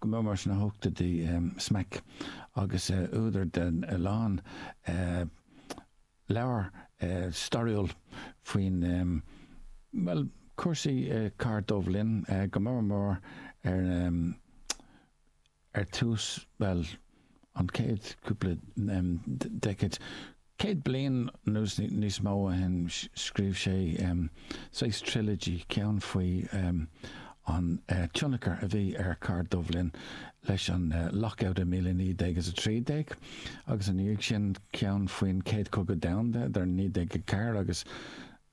go mór mór sna ochtóidí, Smack agus údar de a lán leabhar stairiúil faoin, bhuel, cúrsaí cathair Dubh Linn go mór mór ar tús, bhuel, an chéad chúpla decade, céad bliain nó níos mó ó shin, scríobh sé saghas trilogy, ceann faoi an tionachar a bhí ar cathair Dubh Linn leis an Lockout i míle naoi déag is a trí déag, agus ina dhiaidh sin ceann faoin Chéad Chogadh Domhanda idir naoi déag a ceathair agus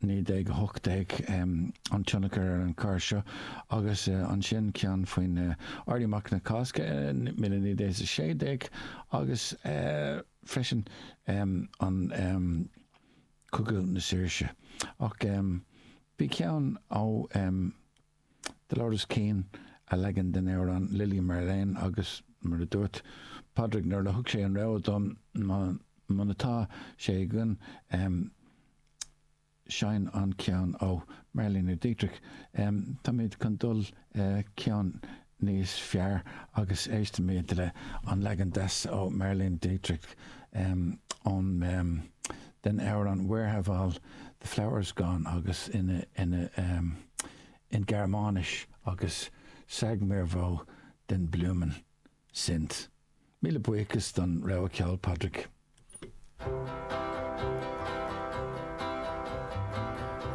1918, an tionchar ar an chathair seo, agus ansin ceann faoin Éirí Amach na Cásca, míle naoi déag is a sé déag, agus freisin an Cogadh na Saoirse. Ach bhí ceann ó. Dolores Keane a leagan den amhrán 'Lili Marlene' agus mar a dúirt Padraig nuair a thug sé an rogha dom, muna tá sé againn, seinn an ceann ó Marlene Dietrich. Táimid chun dul ceann níos fearr agus éistimid le an leagan deas ó Marlene Dietrich ón den amhrán Where Have All The Flowers Gone agus in Gearmáinis agus Sag Mir Wo Den Blumen Sind. Míle buíochas don rogha ceoil, Padraig.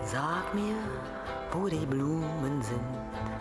Sag mir, wo die Blumen sind.